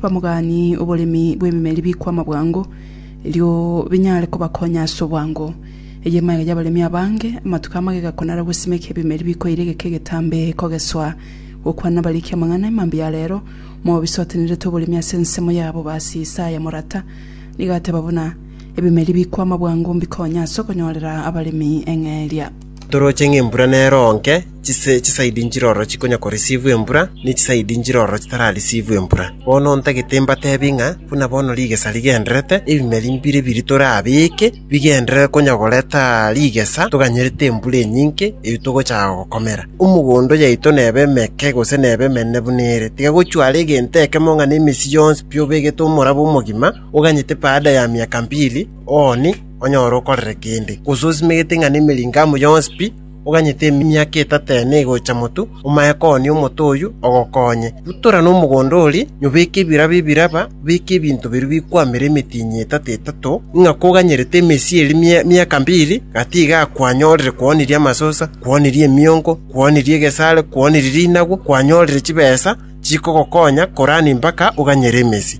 Bamogani oboremi bw'ememeri bikwama bwango, erio binyare kobakonya ase obwango. Eye emagega y'abaremi abange, amatuko a magega konara gosimeka ebimeri bikoire egeka egetambe kogeswa. Gokwana bariki amang'ana e mambia a reero, Moab isotenerete oboremi ase ensemo yabo, Baasi Isaa ya morata. Nigo ateba buna, Ebimeri bikwama bwango mbikonye ase okonyorera abaremi eng'eria. Toroche ng'a embura nero nke, chisaidi nchirororo chikonya korisivwa embura, ne chisaidi nchirororo chitararisivwa embura. Bono ntagete mbateebie ng'a buna bono rigesa rigendererete, ebimeri mbire biri torabeke bigenderere konya goreta rigesa toganyerete embura enyinke eyio togochaka gokomera. Omogondo yaito nebe emeke gose nebe emenene buna ere, tiga gochwara egento ekemo ng'a nemesii yonsi pi obegete omorabo omogima, oganyete baada ya miaka mbili, ooni, onyore okorere kende, gose osimegete ng'a nemeringo amo yonsi pi, oganyete emiaka etato ene egocha motu, omae kooni omote oyio ogokonye. Rutora nomogondo oria, nyobeke ebiraba ebiraba, obeke ebinto biria bikwamera emetienyi etato etato, ng'a koganyerete emesia eria mia emiaka mbiri, gati iga kwanyorire kwooniria amasosa, kwooniria emiongo, kwooniria egesaare, kwooniria rinagwo, kwanyorire chibesa chikogokonya korani mpaka oganyere emesia.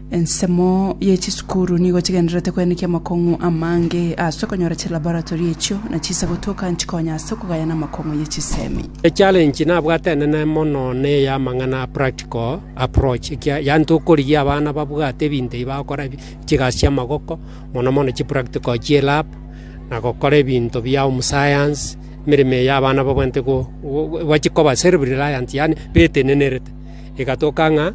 Ensemo ye chisukuru nigo chigendererete koenekia amakong'u amange ase okonyora chilaboratory echio, na chiise gotoka nchikonya ase okogayana amakong'u ye chisemi. Echallenge nabwate enene mono neye amang'ana a practical approach, ekia yaani tokorigia abana babwate ebinto ebi bagokora ebi chigasi chiamagoko, mono mono chipractical chie lab, na gokora ebinto bia omosayansi, emeremo eye abana babwenerete go go bachikoba self reliant yaani betenenerete. Egatoka ng'a.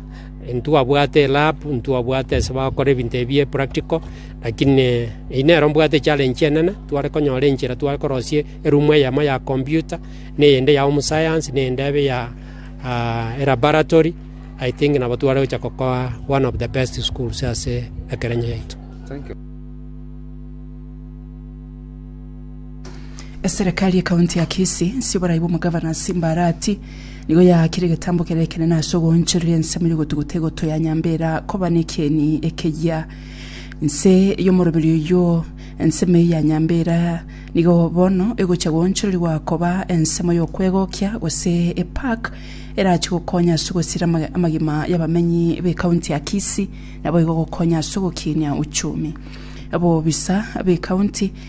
Intwabwate elab, intwabwate ase bagokora ebinto ebi epractical, lakini eyio nero mbwate echallenge enene, tware konyora enchera tware korosia erumu eyemo ya computer, na eyende ya homesayansi, na eyende ebe ya ah, elabaratory, I think nabo tware gocha gokoa one of the best schools ase ekerenya yaito. Thank you. Eserekari y'ekaunti ya Kisii nse y'oborai bw'omogavana Simbara Ati nigo yaakire egetambo kere ekenene ase ogoonchoreria ensemo y'ogotuguta egoto ya Nyambera koba nekieni ekeyia. Nse y'omoroberi oyio ensemo eye ya Nyambera nigo bono egochia goonchorerigwa koba ensemo y'okwegokia gose epark erachie gokonya ase ogosira ama- amagima y'abamenyi b'ekaunti ya Kisii naboigo gokonya ase ogokinia uchumi. Abobisa b'ekaunti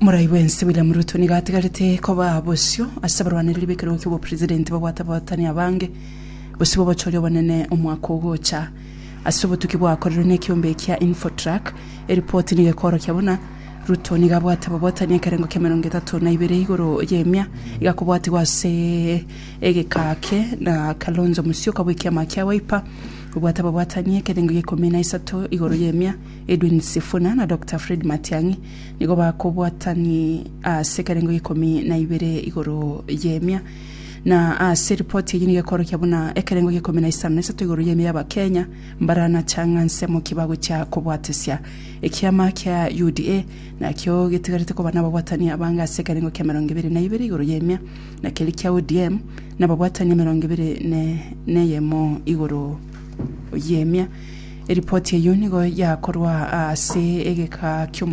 Morai bwensi William Ruto nigo atigarete koba bosio ase abarwanereri b'ekerogo ki'obopresident babwate abahootani abange bosio b'obochori obonene omwaka ogocha. Ase obotuki bwakorerwe nekiombe ekia Infotrak, eripoti nigo ekoorokia buna Ruto nigo abwate ababootani ekerengo ki'emerongo etato na ibere igoro y'emia igakobwatigwa ase egeka ake na Kalonzo Musyoka bw'ekiama kia Wiper obwate ababoatani ekerengo gi'ekomi na isato igoro y'emia Edwin Sifuna na Doctor Fred Matiang'i nigo bakobwatani ase ekerengo gia ikomi na ibere igoro y'emia, na ase ripoti eyio nigo ekorokia buna ekerengo gia ikomi na isano na isato igoro y'emia y'Abakenya mbaranacha ng'a nsemo ki bagochia kobwatesia. Ekiama kia UDA nakio getigarete koba nababwatani abange ase ekerengo kia emerongo ebere na ibere igoro y'emia, na keria kia ODM nababwatani emerongo ebere ne neyemo igoro y'emia. Eripoti eyio nigo yakorwa ase egeka ki'omochie.